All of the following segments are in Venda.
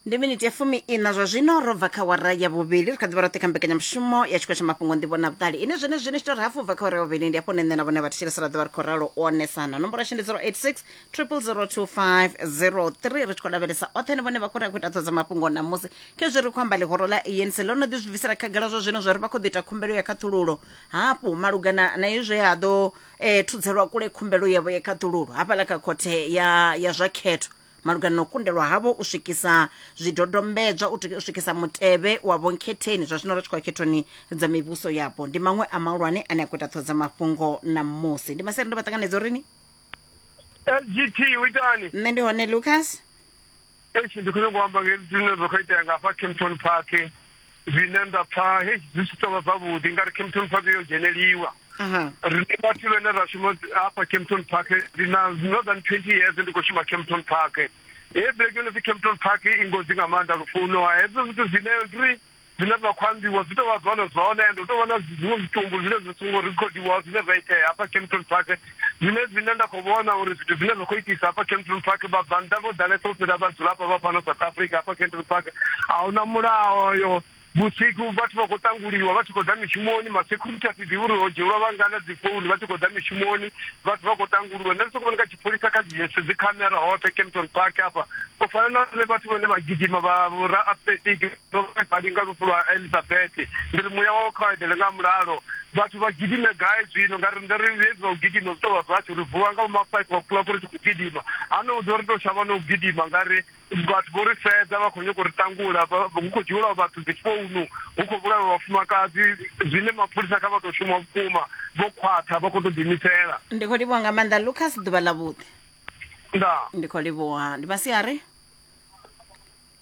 ndi miniti ya fumi ina zwa zwino ro bva kha wara ya vhuvhili ri kha ḓivha roṱhe kha mbekanyamushumo ya tshikolo tsha mafhungo nḓivho na vhuṱali ine zwene zwine tshitori hafu bva kha wara ya vhuvhili ndi hafho nṋe na vhone vha thetshelesa ra ḓovha ri khou ralo u onesana nomboro yashu ndi 086 002503 ri tshi khou lavhelesa oṱhe ni vhone vha khou ri a khou ita ṱhodzo mafhungo namusi khezwi ri khou amba ḽihoro ḽa anc ḽo no ḓi zwi bvisela khagala zwa zwino zwa ri vha khou ḓi ita khumbelo ya khaṱhululo hafhu malugana na izwe ha ḓo e, thudzelwa kule khumbelo yavho ya khaṱululo hafhaḽa kha khothe ya, ya zwa khetho malugana na u kundelwa havho u swikisa zwidodombedzwa u tika- u swikisa mutevhe wa vhonkhetheni zwa zwino ri tshi khou ya khethoni dza mivhuso yapo ndi maṅwe a mahulwane ane a khou ita ṱhoho dza mafhungo na musi ndi masere ndo vha ṱanganedza uri ni lgt u itani nṋe ndi hone lucas eish ndi khou nyanga u amba nge zwine zwa khou itea nga hafha campton park zwine nda pfa hei zwi si tovha zwavhuḓi ngari campton park yo dzheneliwa rine vhathu vhene ra shuma hafha campton park ndi na more than twenty years ndi khou shuma campton park he black yone pfi campton park i ngozi nga maanḓa lufuno hezwo zwithu zwine ri Zwine zwa khou ambiwa zwi tou vha zwone zwone and hu tou vha na zwiṅwe zwitumbu zwine zwi songo rikhodiwaho zwine zwa itea hafha Kempton Park zwine zwine nda khou vhona uri zwithu zwine zwa khou itisa hafha Kempton Park vhabvannḓa vho ḓalesa u fhira vhadzulapo vha fhano South Africa hafha Kempton Park a hu na mulayo vhusiku vhathu vha khou tanguliwa vha tshi khou ḓa mishumoni masecurity a si ḓivhi uri ho dzhielwa vhangana dzi founu vha tshi khou ḓa mishumoni vhathu vha khou tanguliwa nṋe ndi sokou vhona kha tshipholisa kha dzi yese dzi khamera hoṱhe Kempton Park hafha u fana na vhathu vhane vha gidima vha vhora athletic Ndo vha badi nga lufu lwa Elisabete, ndi ri muya wawe kha u eḓele nga mulalo. Vhathu vha gidime gai zwino? Nga riṋe ri hezwi zwa u gidima zwi tou vha zwashu, ri vuwa nga vhoma five o'clock ri tshi khou gidima. Hano hu ḓo ri tou shavha na u gidima nga ri vhathu vho ri sedza vha khou nyanga u ri ṱangula, hu khou dzhielwa vhathu dzi founu, hu khou vhulaiwa vhafumakadzi, zwine mapholisa kha vha tou shuma vhukuma vho khwaṱha vha khou tou ḓiimisela. Ndi khou livhuwa nga maanḓa Lucas, ḓuvha ḽavhuḓi. Ndaa. Ndi khou livhuwa, ndi masiari.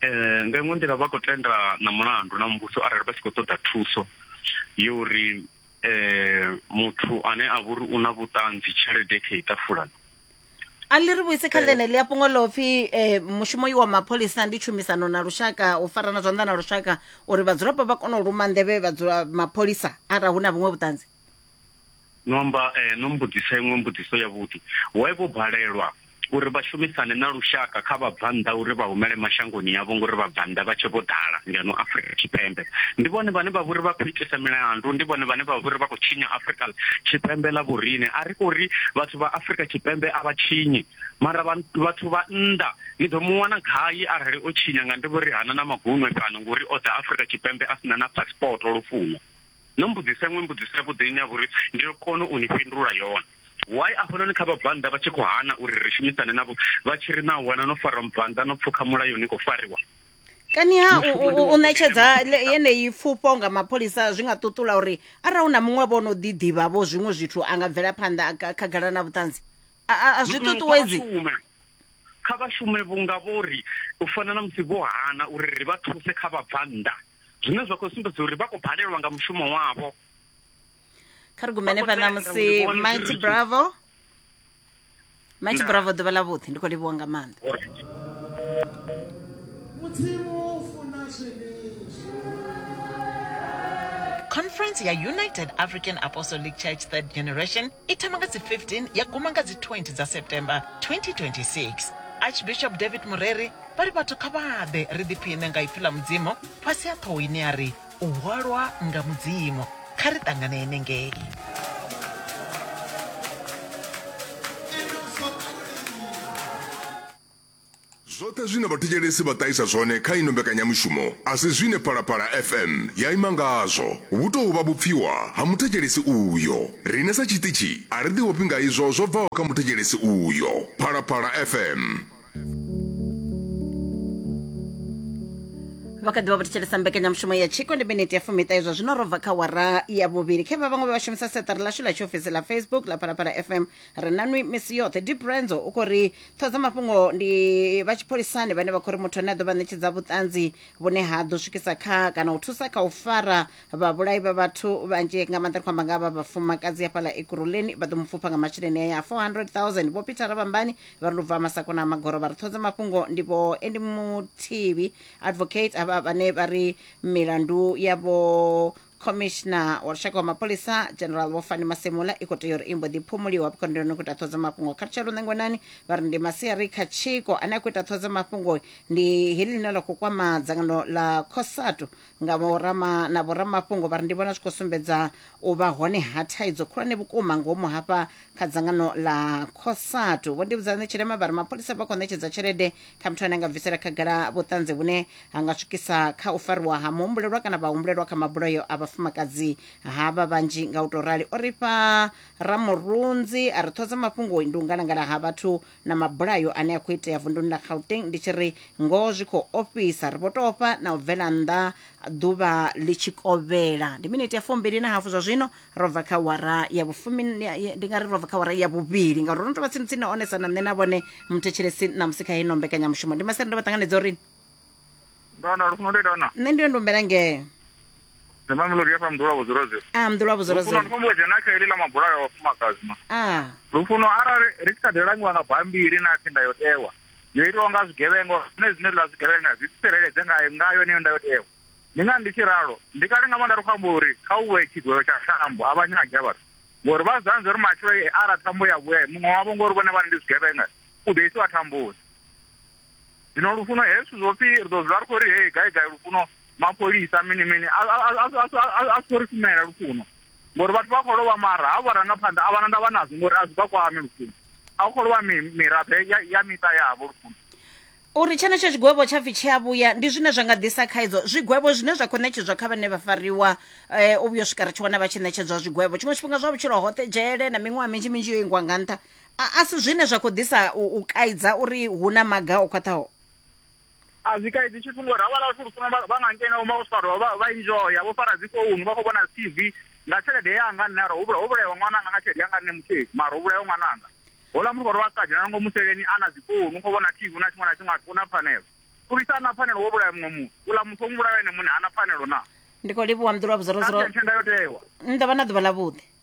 eh nga iṅwe nḓila vha khou tenda na mulandu na muvhuso arali vha tshi khou ṱoḓa thuso yo uri eh muthu ane a vhori una vhuṱanzi tshelede khe itafulani a ḽi ri vhuise kha ḽene ḽi a fhungo ḽo pfhi eh, mushumo wa mapholisa ndi tshumisano na lushaka u farana zwanḓa na lushaka uri vhadzulapo vha kone u luma nḓevhe vhadzula mapholisa arali hu na vhuṅwe vhuṱanzi no amba eh, no mbudzisa iṅwe mbudziso yavhuḓi why vho balelwa uri vha shumisane na lushaka kha vhabvannḓa uri vha humele mashangoni yavho ngori vhabvannḓa vha tshe vho ḓala ngeno afrika tshipembe ndi vhone vhane vha vhori vha khou itisa milandu ndi vhone vhane vha vhori vha khou tshinya afrika tshipembe ḽa vhorine a ri kho ri vhathu vha afrika tshipembe a vha tshinyi mara vhathu vha nnḓa ni ḓo mu wana gai arali o tshinya nga ndi vhori hana na magunwe fhano ngori o ḓa afrika tshipembe a sina na passport lufuno No mbudzisa iṅwe mbudziso yavhuḓi ine ya vha uri ndi ḓo kona u ni fhindula yone. Why afhanoni kha vhabvannḓa vha tshi khou hana uri ri shumisane navho vha tshi ri naa wana no farwa mubvannḓa no pfuka mulayo ni khou fariwa? Kani ha u, u, u, u ṋetshedza yeneyi pfufho nga mapholisa zwi nga ṱuṱula uri arali hu na muṅwe vho no ḓi ḓivha vho zwiṅwe zwithu a nga bvela phanḓa khagala na vhuṱanzi a zwi ṱuṱuwedzi kha vha shume vhunga vho ri u fana na musi vho hana uri ri vha thuse kha vhabvannḓa zwine zwa khou sumbedza uri vha khou balelwa nga mushumo wavho kha ri gumene fha ṋamusi mighty bravo mighty bravo ḓuvha ḽa vhuḓi ndi khou livhuwa nga maanḓa Conference ya United African Apostolic Church Third Generation I thoma nga dzi 15 ya guma nga dzi 20 dza September 2026. Archbishop David Mureri vha ri vhathu kha vha ḓe ri ḓiphiṋe nga ipfi ḽa Mudzimu fhasi ha ṱhoho ine ya ri U Hwalwa nga Mudzimu. Kha ri ṱangane henengei. Zwoṱhe zwine vhathetshelesi vha ṱahisa zwone kha ino mbekanyamushumo a si zwine Phalaphala FM ya ima ngazwo. Vhu tou vha vhupfiwa ha muthetshelesi uyo. Riṋe sa tshiṱitshi a ri ḓiofhi nga izwo zwo bvaho kha muthetshelesi uyo. Phalaphala FM. vha kha ḓivha vho thetshelesa mbekanyamushumo ya tshiko ndi miniti ya fumiṱahe zwa zwino ro bva kha wara ya vhuvhili khe vha vhaṅwe vha vha shumisa seṱari ḽashu ḽa tshiofisi ḽa facebook ḽa phalaphala fm ri na nwi misi yoṱhe deep renzo u khou ri ṱhodza mafhungo ndi vha tshipholisani vhane vha khou ri muthu ane a ḓo vha ṋetshedza vhuṱanzi vhune ha ḓo swikisa kha kana u thusa kha u fara vhavhulayi vha vhathu vhanzhi nga maanḓa ri khou amba nga vha vhafumakadzi hafhaḽa ekuruleni vha ḓo mu pfupha nga masheleni aya a 400000 vho peter rabambani vha ri lu bva masakona a magoro vha ri ṱhodza mafhungo ndi vho endi muthivi advocate havha vhane vha ri milandu yavho khomishina wa lushaka wa mapholisa general vho fani masemula i khou tea uri i mbo ḓi phumuliwa vhukondoni khou ita ṱhodzo mafhungo kha lutsha lunengonani vha ri ndi masiari kha tshiko ane a khou ita ṱhodzo mafhungo ndi heḽi ḽine ḽa khou kwama dzangano ḽa cosatu nga vhorama na vhoramafhungo vha ri ndi vhona zwi khou sumbedza u vha hone ha thaidzo khulwane vhukuma ngomu hafha kha dzangano ḽa cosatu vho ndivhudzane tshilema vha ri mapholisa vha khou ṋetshedza tshelede kha muthu ane a nga bvisela khagala vhuṱanzi vhune ha nga swikisa kha u fariwa ha muhumbulelwa kana vhahumbulelwa kha mabulayo a vhafumakadzi havha vhanzhi nga u tou rali o ri fha ramurunzi a ri ṱhodza mafhungo ndi u ngalangala ha vhathu na mabulayo ane a khou itea vunduni ḽa gauteng ndi tshi ri ngoho zwi khou ofhisa ri vho tofha na u bvela nnḓa ḓuvha ḽi tshi kovhela ndi miniti ya fumbili na hafu zwa zwino ro bva kha wara ya vhufumi ndi nga ri ro bva kha wara ya vhuvhili ngauri ro no tou vha tsini tsini na onesa na nṋe na vhone muthetshelesi ṋamusi kha heino mbekanyamushumo ndi masere ndo vha ṱanganedza uri Ndona lufuno ndi dona. nṋe ndi yo ndombela ngeo Ndi mamelodi ya fha mdula vhudzula zwe. a mḓulwa Lufuno ndi vhudzolazolo fhumbulo dzhena kha ili ḽa mabula ya vhafumakadzi ma. a Lufuno arali ri tshi kha ḓi langiwa nga bammbiri na pfi ndayotewa yo itiwa nga zwigevhengo zwine zwine ḽa zwigevhenga zwi tsireledze nga nga yone ndayotewa. Ndi ngani ndi tshi ralo? Ndi kale nga maanḓa ri khou amba uri kha u vhe tshigwevho tsha thambo a vha nyagi a vhathu. Ngori vha zanza uri matshelo ara thambo ya vhuya muṅwe wavho ngori vhone vhane ndi zwigevhenga u ḓo isiwa thamboni. zwino lufuno hezwi zwo pfi ri ḓo zwi ri khou ri hei gai gai lufuno mapholisa mini mini a si khou ri shumela lufuno ngori vhathu vha khou lovha mara ha vharangaphanḓa a vhana ndavha nazwo ngori a zwi vha kwame lufuno a khou lovha miraḓo ya miṱa yavho lufuno uri tshenetsho tshigwevho tsha pfi tshi a vhuya ndi zwine zwa nga ḓisa khaidzo zwigwevho zwine zwa khou ṋetshedzwa kha vhane vha fariwa eh, u vhuyo swika ri tshi wana vha tshi ṋetshedzwa zwigwevho tshiṅwe tshifhinga zwa vhutshilo hoṱhe dzhele na miṅwaha minzhi minzhi yo ingwa nga nṱha A, a si zwine zwa khou ḓisa u, u kaidza uri hu na maga o khwaṱhaho a zwi kaidzi tshithu ngori havhala vhathu lufuna vha nga ngena uma vho farwa vha enjoya vho fara dzi founu vha khou vhona dzi tv nga tshelede yanga nṋe ara ho vhulaiwa ṅwananga nga tshelede yanga nṋe mutheli mara ho vhulaiwa ṅwananga hola muthu vhari wa sa dzhena ngo museleni a na dzi founu u khou vhona tv na tshiṅwe na tshiṅwe athu na pfanelo uri sa na pfanelo wo vhulaya muṅwe muthu uḽa muthu o muvhulaya ene muṋe ha na pfanelo na ndi khou livhuwa mḓulwa vhuzorozoro tshenda yo tewa nda vha na ḓuvha ḽa vhuḓi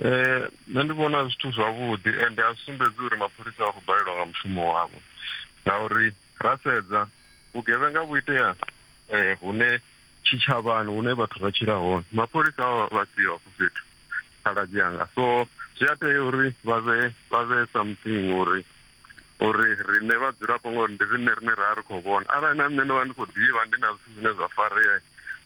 Eh, nṋe ndi vhona zwithu zwavhuḓi ende a sumbedzi uri mapholisa a khou balelwa nga mushumo wavho ngauri ra sedza vhugevhenga vhu itea um hune tshitshavhani hune vhathu vha tshila hone mapholisa a vha siho hafho fhethu khaladzi anga so zwi a tea uri vha vhe vha vhe something uri uri riṋe vhadzulapo ngori ndi riṋe rine ra ri khou vhona arali na nṋe ndo vha ndi khou ḓivha ndi na zwithu zwine zwa farea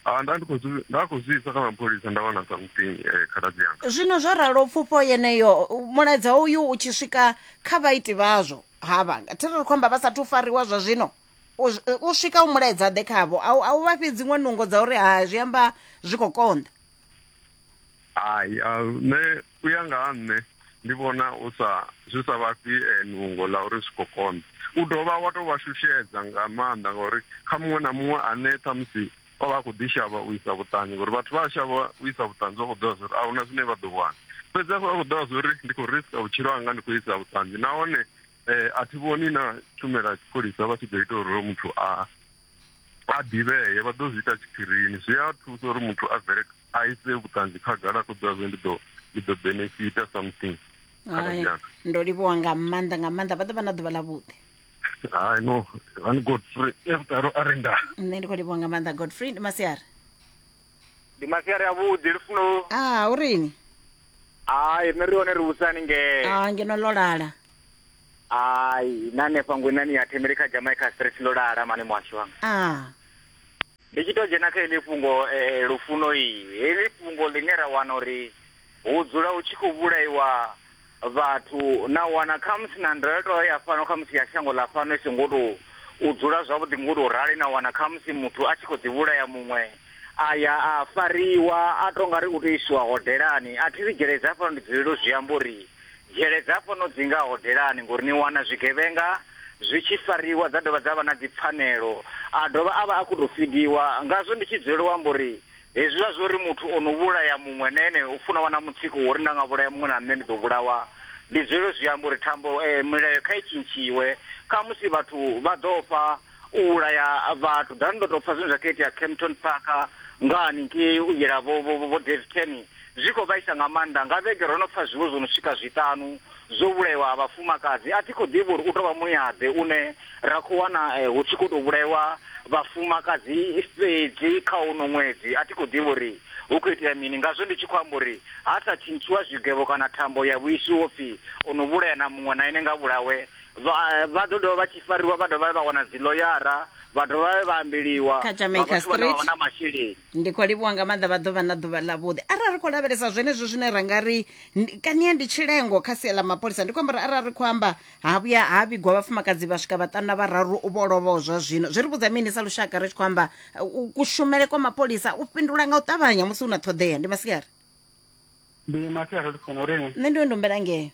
a nda ndi khou nda khou zwi isa kha mapholisa nda wana something eh, khaladzi yanga zwino zwo ralo pfufho yeneyo mulaedza uyu u tshi swika kha vhaiti vhazwo havha thi ri khou amba vha sathu fariwa zwa zwino u swika u mulaedza ḓe khavho a u vha fhi dziṅwe nungo dza uri ha zwi amba zwi khou konḓa hai nṋe U ya nga ha nṋe ndi vhona u sa, zwi sa vha fhi nungo ḽa uri zwi khou konḓa. U dovha wa tou vha shushedza nga maanḓa ngauri kha muṅwe na muṅwe ane ṱhamusi o vha a khou ḓi shavha u isa vhuṱanzi, ngori vhathu vha a shavha u isa vhuṱanzi vha khou ḓivha zwa uri a hu na zwine vha ḓo wana. Fhedzi hafha vha khou ḓivha zwa uri ndi khou riska vhutshilo hanga ndi khou isa vhuṱanzi nahone a thi vhoni na tshumelo ya tshipholisa vha tshi ḓo ita uri hoyo muthu a a ḓivhee vha ḓo zwi ita tshiphirini zwi a thusa uri muthu a bvele a ise vhuṱanzi khagala a khou ḓivha zwe ndi ḓo ndi ḓo benefita something hai ndo livhuwa nga maanḓa nga maanḓa vha ḓo vha na ḓuvha ḽavhuḓi hai no ani godfrey evutalo a renda nṋe ndi khou livhuwa nga maanḓa godfrey ndi masiari ndi masiari avhuḓi lufuno a ah, u rini hai nṋe ri hone ri vhusani ngee a ah, ngeno ḽo lala hai na hanefha ngwenani ya themele kha jamaica street ḽo lala mane muhasho wanga a ah. ndi tshi tou dzhena kha heḽi fhungo eh, eh, lufuno iyi heḽi fhungo ḽine ra wana uri hu dzula hu tshi khou vhulaiwa vhathu na wana khamusi na ndayotewa ya fhano khamusi ya shango ḽa fhano i songo to u dzula zwavhuḓi ngo to rali na wana khamusi muthu a tshi kho ḓi vhulaya muṅwe a ya a fariwa a to nga ri u to isiwa hodelani a thi ri dzhele dza fhano ndi dzulele u zwi amba uri dzhele dza fhano dzi nga hodelani ngori ni wana zwigevhenga zwi tshi fariwa dza dovha dza vha na dzipfanelo a dovha a vha a khou tou fidiwa ngazwo ndi tshi dzulela u amba uri Hezwiḽa zwa uri muthu o no vhulaya muṅwe na ene u funa u vha na mutsiko wa uri nda nga vhulaya muṅwe na nṋe ndi ḓo vhulawa, ndi zwelwo zwi amba uri thambo milayo kha i tshintshiwe. Khamusi vhathu vha ḓo ofha u vhulaya vhathu. Ḓani ndo tou pfa zwine zwa khou itea Kempton Park nga haningei u yela vho Daveyton. Zwi khou vhaisa nga maanḓa. Nga vhege ro no pfa zwiwo zwo no swika zwiṱanu zwo vhulaiwa ha vhafumakadzi. A thi khou ḓivha uri u tou vha muya-ḓe une ra khou wana hu tshi khou tou vhulaiwa vhafumakadzi fhedzi kha uno ṅwedzi. A thi khou ḓivha uri hu khou itea mini, ngazwo ndi tshi khou amba uri ha sa tshintshiwa zwigevho kana thambo ya vhuiswi ho pfi o no vhulaya na muṅwe na ene nga a vhulawe. Vha vha ḓo dovha vha tshi fariwa vha dovha vha wana dziḽoyara vha dovha vha ambeliwa nga vhathu vhane vha vha na masheleni. ndi khou livhuwa nga maanḓa vha ḓovha na ḓuvha ḽavhuḓi arali ri khou lavhelesa zwenezwo zwine ra nga ri kania ndi tshilengo kha sia ḽa mapholisa ndi khou amba uri arali ri khou amba ha vhuya ha vhigwa vhafumakadzi vha swika vhaṱanu na vhararu vho lovhaho zwa zwino zwi ri vhudza mini sa lushaka ri tshi khou amba uh, kushumele kwa mapholisa u fhindula nga u ṱavhanya musi hu na ṱhoḓea ndi masiari ndi masiari ri funa uri nṋe ndi wendombela ngeo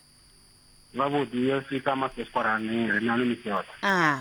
vhavhuḓi yo sika masesparani ri nani misiota a ah.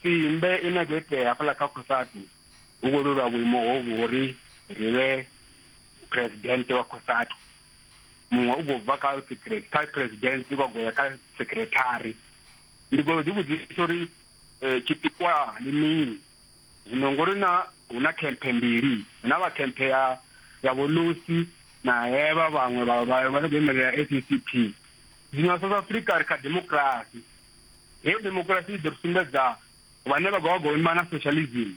Tsimbe i na gethea hafhaḽa kha Cosatu hu khou lwelwa vhuimo hovhu ho ri ri vhe phuresidennde wa Cosatu. Muṅwe u khou bva kha kha phuresidennde wa goya kha sekirethari. Ndi khou ḓi vhudzisa uri tshipikwa ndi mini zwino ngori na hu na khemphe mbili, hu na vha khemphe ya ya Vho Lucy na hevha vhaṅwe vha vha vha no khou imelela SACP. Zwino South Africa ri kha democracy Heyo demokirasi i ḓo ri sumbedza vhane vha khou ima na socialism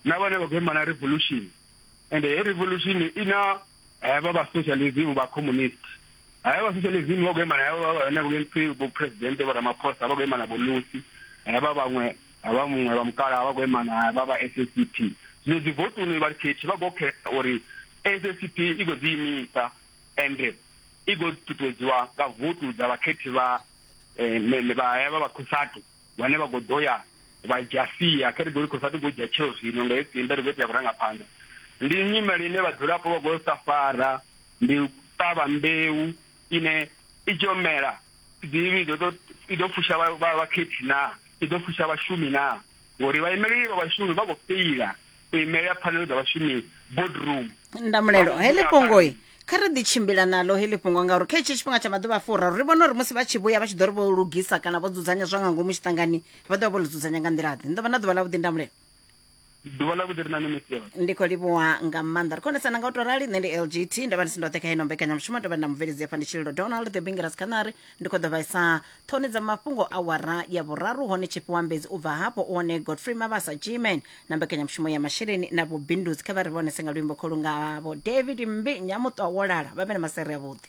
na vhane vha khou ima na revolution and heyo revolution i na havha vha socialism vha communist havha vha socialism vha khou ima na havha vhane vha pfi vho president vho ramaphosa vha khou ima na vho lusi havha vhaṅwe havha muṅwe vha mukala vha khou ima na havha vha SSCP zwino dzi votoni vha khethi vha khou khetha uri SSCP i khou ḓi imisa ende i ḓo ṱuṱuwedziwa nga votu dza vhakhethi vha eh, vha hevha vha khosatu vhane vha khou ḓo ya vha dzhia sia kha ri ḓo ri khosatu khou dzhia tsheo zwino nga hei simbe ri ḓo tea vhurangaphanḓa ndi nyimele ine vhadzulapo vha khou sa fara ndi ṱavha mbeu ine i tshi yo mela dzivhi i ḓo fusha vhakhethi naa i ḓo fusha vhashumi naa ngori vhaimeleli vha vhashumi vha khou feila u imelela pfanelo dza vhashumi boardroom ndamulelo heḽi fhungoi kha ri ḓi tshimbila naḽo heḽi fhungo ngauri kha hetshi tshifhinga tsha maḓuvha a furaru ri vhona uri musi vha tshi vhuya vha tshi ḓo ri vho lugisa kana vho dzudzanya zwa nga ngomu tshiṱangani vha ḓo vha vho ḽi dzudzanya nga nḓila ḓe ni ḓo vha na ḓuvha ḽa vhuḓi ndamulelo ḓuvha ḽa vhuḓi ri na ni misi yone ndi khou livhuwa nga maanḓa ri khonesana nga u tou rali nṋe ndi lgt nda vha ndi si ndoṱhe kha ino mbekanyamushumo ndo vha nda mubveledzi afha ndi tshililo donald the bingeras khanari ndi khou ḓo vhaisa Ṱhoni dza mafhungo awara ya vhuraru hone tshifhiwambedzi u bva hafho u hone godfrey mabasa gman na mbekanyamushumo ya masheleni na vhubindudzi kha vha ri vhonese nga luimbo kholu ngavho david mmbi nyamuṱwa wo lala vha vhe na masere avhuḓi